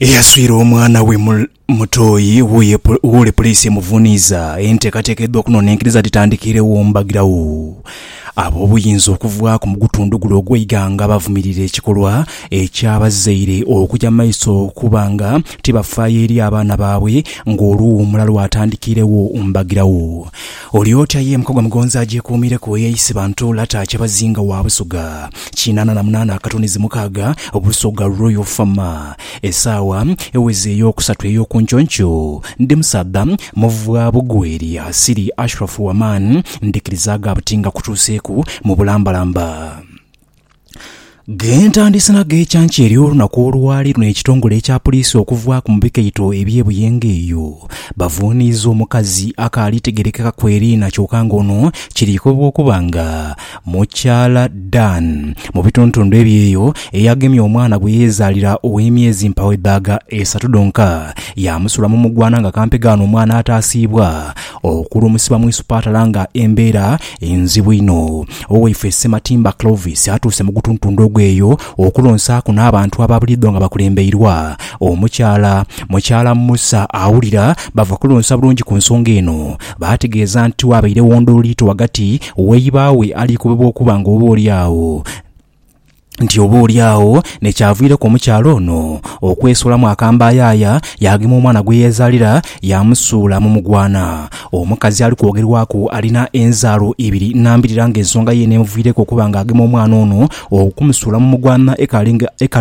Eyaswire omwana we mu Mutooyi wuye wuule Puliisi emuvuniiza enteekateeka edha okunonenkeriza dhitandikiiregho mbagiragho. Ab'obuyinza okuva ku gutundhu gule ogw'eighanga bavumirira ekikolwa eky'abazaire okuja mu maiso okuba nga tibafaayo eri abaana baabwe ng'oluwuumula lwatandikiiregho mbagiragho. Oli otya ye Mukagwa Mugonzi agyekuumireku eyeeyise bantu Lata Kyabazinga wa Busoga kinaana na munaana akatunizi mukaaga, Busoga Royal Fama. Esaawa eweze ey'okusatu ey'okunkyonky Ndi musaadha muvwa bugweri asiri Ashraf Waman ndhikirizaaga buti nga kutuuseeku mu bulambalamba. Gh'entandise na gh'ekyankya ery'olunaku olwali luno ekitongole ekya puliisi okuvaaku mu bikaito eby'e Buyenga eyo bavuuniiza omukazi akaali tegerekeka ku eriina kyoka nga ono kiriikobwa okuba nga mukyala Dan mu bitundutundu eby'eyo eyagemye omwana gwe yeezaalira ow'emyezi mpawoedhaaga esatu dhonka yaamusulamu mugwana nga kampegaano omwana ataasiibwa Okulumuusibwa mu isupatala nga embeera nzibu inho. Owaife Ssematimba Clovis atuuse mu gutuntundhu ogw'eyo okulonsaaku n'abantu aba buliidho nga bakulembeirwa omukyala Mukyala Musa Awulira bava kulonsa bulungi ku nsonga eno. Baategeeza nti wabairegho ndhooliito ghagati w'eibaawe aliikobebwa okuba nga oba oli agho nti oboolyawo n'ekyavaaireku omukyala ono okwesulamu akambayaaya yaagema omwana gwe yeezaalira yaamusuula mu mugwana. Omukazi ali kwogerwaku alina enzaalo ibiri nambirira ng'ensonga yeene emuviireku okuba ng'agema omwana ono okumusuula mu mugwana ekaali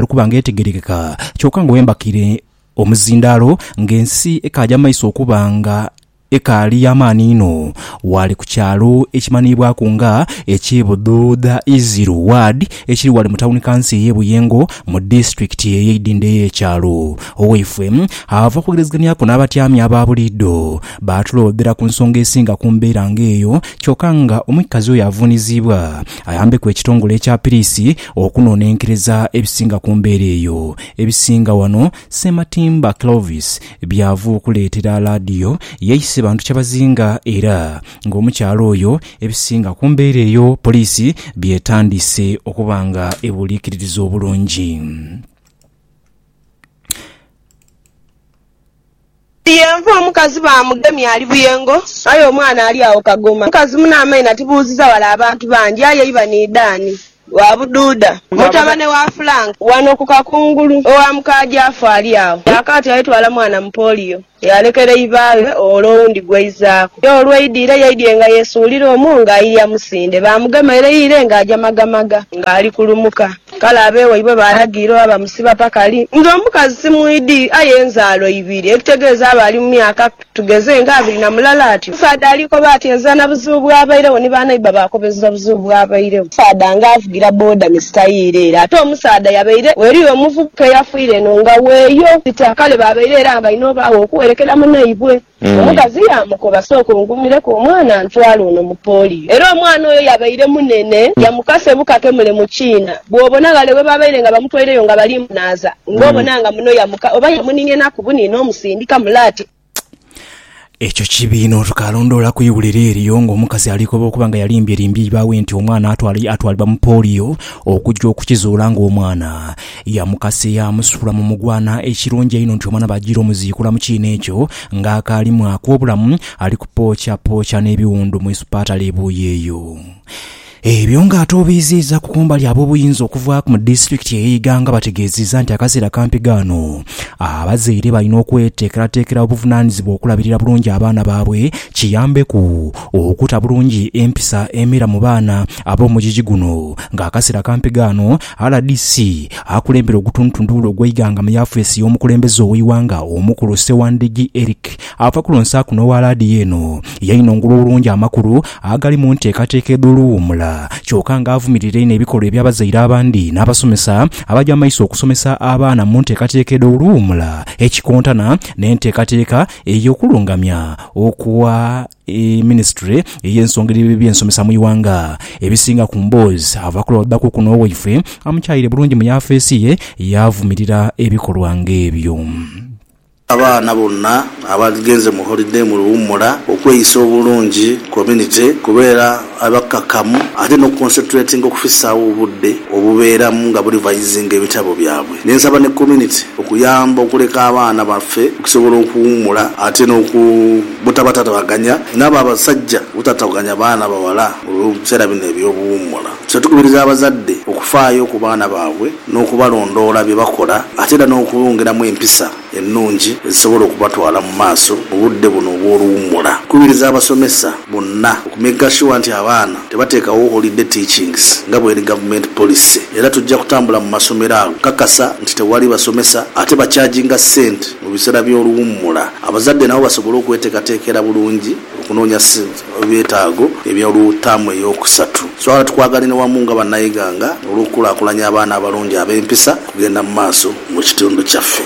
kuba ng'etegeerekeka kyoka nga wembakiire omuzindaalo ng'ensi ekaaja mu maiso okuba nga Ekaali y'amaani inho ghale ku kyalo ekimanhiibwaku nga eky'e Budhuudha Iziru Ward ekiri ghale mu tawuni kanso ey'e Buyengo mu disitulikiti ey'e Idindho ey'ekyalo. Owaifwe ava kwogerezeganhiaku n'abatyami aba buliidho baatulooodhera ku nsonga esinga ku mbeera nga eyo kyoka nga omwikazi oyo avuuniziibwa ayambeku ekitongole ekya piriisi okunoonenkereza ebisinga ku mbeera eyo ebisinga ghano Ssematimba Clovis Byava okuleetera Aladio yaise bantu kyabazinga era ng'omukyala oyo ebisinga ku mbeera eyo poliisi by'etandise okuba nga ebuliikiririza obulungi. Yenva omukazi baamugemye ali buyengo aye omwana ali agho kagoma. Mukazi mune amaino atibuuziza wale abantu bangi aye iba ni Dan. Wa Bududa, mutabane wa Frank, ghano ku Kakungulu, owa muka Jafu ali agho. Kyakaati yaitwala mwana mu polio, yaalekera ibaaghe ole owundi gw'aizaaku. Ye olw'aidiire, yaidhie nga yeesuulira omwo nga ailya musinde. Baamugema ere ire nga aja magamaga, nga ali kulumuka. Kale abe waibwe baalagira oba bamusiba paka li. Nze omukazi simwidhi, aye nzaalo ibiri, ekitegeeza aba ali mu myaka. Tugeze nga abiri na mulala ati, omusaadha ali koba ati enza na buzibu bw'abairegho ni banaiba bakobeza obuzibu bw'abairegho. Omusaadha nga avugira boda ni sitayiri ere ate omusaadha yabaire gheri omuvubuka eyafiire eno nga weeyo sita kale babaire era balina obaagho okuwerekera munaibwe. Omukazi yaamukoba sooka ongumireku omwana ntwale ono mu polio era omwana oyo yabaire munene yamukase bukake mule mu kiina bwobona ghale ghe babaire nga bamutwaireyo nga bali munaaza. Nga obona nga muno yamuka oba yamuninhenaku buni n'omusindika mule ati. Ekyo kibi inho. Tukaalondoola ku iwulire eryo ng'omukazi alikoba okuba nga yalimbyelimbye iba we nti omwana atwalibwa mu polio okugya okukizuula ng'omwana yamukase yaamusuula mu mugwana. Ekirungi einho nti omwana baajiire omuziikula mu kiina ekyo ng'akaali mwaaku obulamu, ali kupookyapookyana ebiwundu mu isupaatale e Buuyi eyo. Ebyo nga ate obiiziiza ku kumbali ab'obuyinza okuva mu disitulikiti eye Iganga bategeeziza nti akaseera kampi ghano abazaire balina okweteekerateekera obuvunanizibwa okulabirira bulungi abaana baabwe kiyambeku okuta bulungi empisa emera mu baana ab'omugigi guno nga akaseera kampi ghano rdc akulembera ogutundutundu ogw'eiganga mu yafeesi y'omukulembeze ow'eighanga omukulu Ssewandigi Eric Ava ku Lonsa kuno owa laadiyo eno yainhongolwa obulungi amakulu agali mu nteekateeka edh'Olu Wuumula kyoka nga avumirira inho ebikolwa eby'abazaire abandi n'abasomesa abaja mu maiso okusomesa abaana mu nteekateeka edh'Olu Wuumula ekikontana n'enteekateeka ey'okulungamya okwa Minisitule ey'ensonga edh'eby'ensomesa mu ighanga. Ebisinga ku mboozi ava ku Lwaldaku kuno waifwe amukyaire bulungi mu yafeesi ye yaavumirira ebikolwa ng'ebyo. Abaana bonna abaagenze mu holide mu luwummula, okweyisa obulungi, community, kubeera abakakamu ate n'okuconcentratinga okufisaawo obudde obubeeramu nga burevisinga ebitabo byabwe. Ne nsaba ne community okuyamba okuleka abaana baffe okusobola okuwummula ate n'oku butabatataganya n'abo abasajja obutataganya baana bawala mu biseera bino eby'obuwummula. Kino tukubiriza abazadde okufaayo ku baana baabwe. n'okubalondoola bye bakola ate era n'okubongeramu empisa ennungi ezisobola okubatwala mu maaso mu budde buno obw'oluwummula. Nkubiriza abasomesa bonna oku maker sure nti abaana tebateekawo holiday teachings nga bw'eri government policy era tujja kutambula mu masomero ago okukakasa nti tewali basomesa ate bacharginga ssente mu biseera by'oluwummula abazadde nabo basobole okweteekateekera bulungi okunoonya ebyetaago ebya olw taamu ey'okusatu. Swala tukwagalina wamu nga banaighanga olw'okukulakulanya abaana abalungi ab'empisa okugenda mu maaso mu kitundu kyaffe.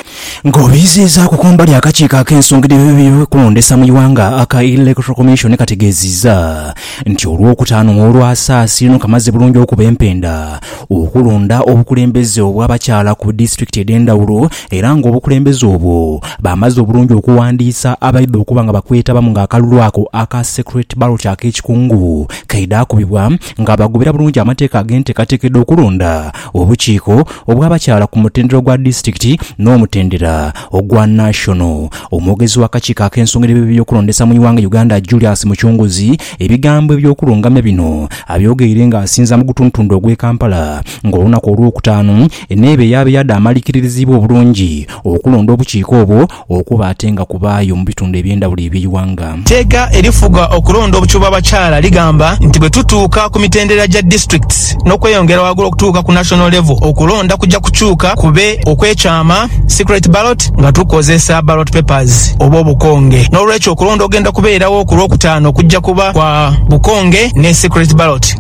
Nga obiiziizaaku kumbali akakiiko ak'ensonga dh'ebyokulondesa mu ighanga aka Electoral Commission kategeeziiza nti olwokutaanu olwasaasi luno kamaze bulungi okuba empenda okulonda obukulembeze obw'abakyala ku disitulikiti edhendhawulo Era ng'obukulembeze obwo bamaze obulungi okuwandiisa abaidha okuba nga bakwetabamu ng'akalulu ako aka Secret Ballot ak'ekikungu kaidhakubibwa ng'abagobera bulungi amateeka ag'enteekateeka edh'okulonda obukiiko obw'abakyala ku mutendera ogwa disitulikiti n'omutendera ogwa National. Omwogezi w'akakiiko ak'ensonga edh'ebibi by'okulondesa mu ighanga Uganda Julius Mucunguzi ebigambo eby'okulungamya bino abyogeire ng'asinza mu gutundutundu ogw'e Kampala ng'olunaku Olwokutaanu Eneeba eyaaba ya dhaamalikiririzibwa obulungi okulonda obukiika obwo okuba ate nga kubaayo mu bitundu eby'endhawulo eby'eighanga. Teeka erifuga okulonda obukiu bw'abakyala ligamba nti bwe tutuuka ku mitendera gya districts n'okweyongera ghagulu okutuuka ku national level, okulonda kuja kukyuka kube okw'ekyama, secret ballot, nga tukozesa ballot papers oba obukonge. N'olwekyo okulonda okugenda kubeerawo ku Lwokutaano kujja kuba kwa bukonge ne secret ballot.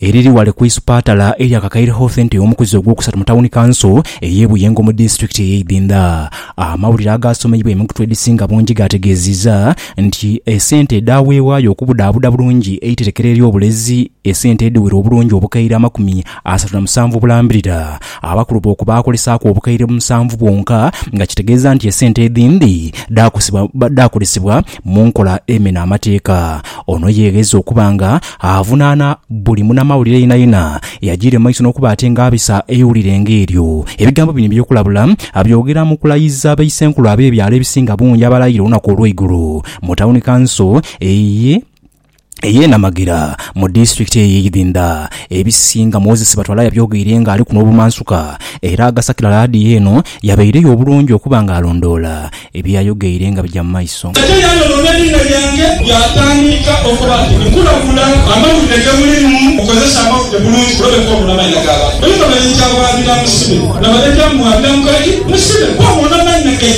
eriri ghale ku isupatala erya Kakaire Health Ente omukuzi ogwokusatu mu tawuni kanso ey'e Buyengo mu disitulikiti ey'e Idhindha. Amawulire agaasomeibwa emikutu edhisinga bungi gaategeezizza nti esente edhaaweebwayo okubudhaabuda bulungi eiterekero ery'obulezi esente edhiwera obulungi obukaire amakumi asatu na musanvu obulambirira abakulu booku baakolesaaku obukaire musanvu bwonka nga kitegeeza nti esente edhindi dhaakozesebwa mu nkola emena amateeka. Ono yeegheza okuba nga avunaana buli munamawulire yenayena eyajiire mu maiso n'okuba ate nga abisa eiwulire nga eryo. Ebigambo bino eby'okulabula abyogera mu kulayiza baisenkulu ab'ebyalo ebisinga bungi abalayira olunaku olw'eigulo mu tawuni kanso eye. ey'e Namagira mu disitulikiti eye Idhinda. Ebisinga Moses Batwala yabyogeire nga aliku n'obumansuka era agasakira laadiyo eno yabaire yo obulungi okuba nga alondoola ebye yayogeire nga bigya mu maiso. Ate yayonoona eriina lyange yaatandiika okuba ati nkulagula amawulire ge mulimu okozese amawulire bulungi kulobeka obula mannya g'abantu. Bwemba baidhi awaabira musibe, na baidhi amuwaabira mukaji musibe, bw'awoona mannya ge.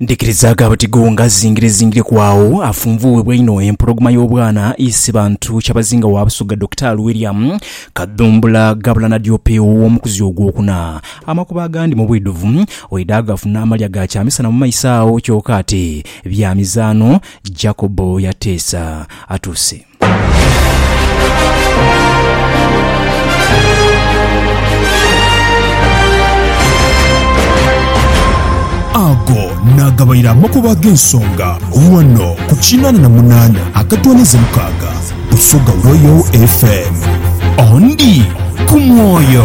Ndhikirizaaga buti gho ng'azingirezingirieku agho afunvuughibwa einho empologoma y'obwana Isibantu Kyabazinga wa Busoga Dokitaali William Kadhumbula ghabula na Diopew ow'omukuzi ogwokuna. Amakubo agandi mu bwidhuvu oidha gafuna amalya ga kyamisana mu maiso agho kyoka ati bya mizaano, Jacob Yateesa atuuse. Ago naagabaire amakubo ag'ensonga ghano ku kinaana na munaana akatooneza mukaaga Busoga Royal FM. Ondi ku mwoyo.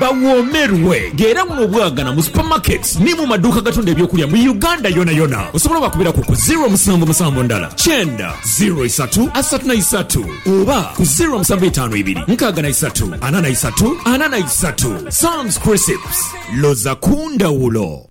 Bawoomerwe nga era buno bwagana mu supermarkets ni mu maduuka agatunda eby'okulya mu Uganda yonayona. Osobola obakubiraku ku ziro musanvu musanvu ndala kyenda ziro isatu asatu na isatu oba ku ziro musanvu itaanu ibiri nkaaga na isatu ana na isatu ana na isatu. Sam's Crisps, loza ku ndhawulo!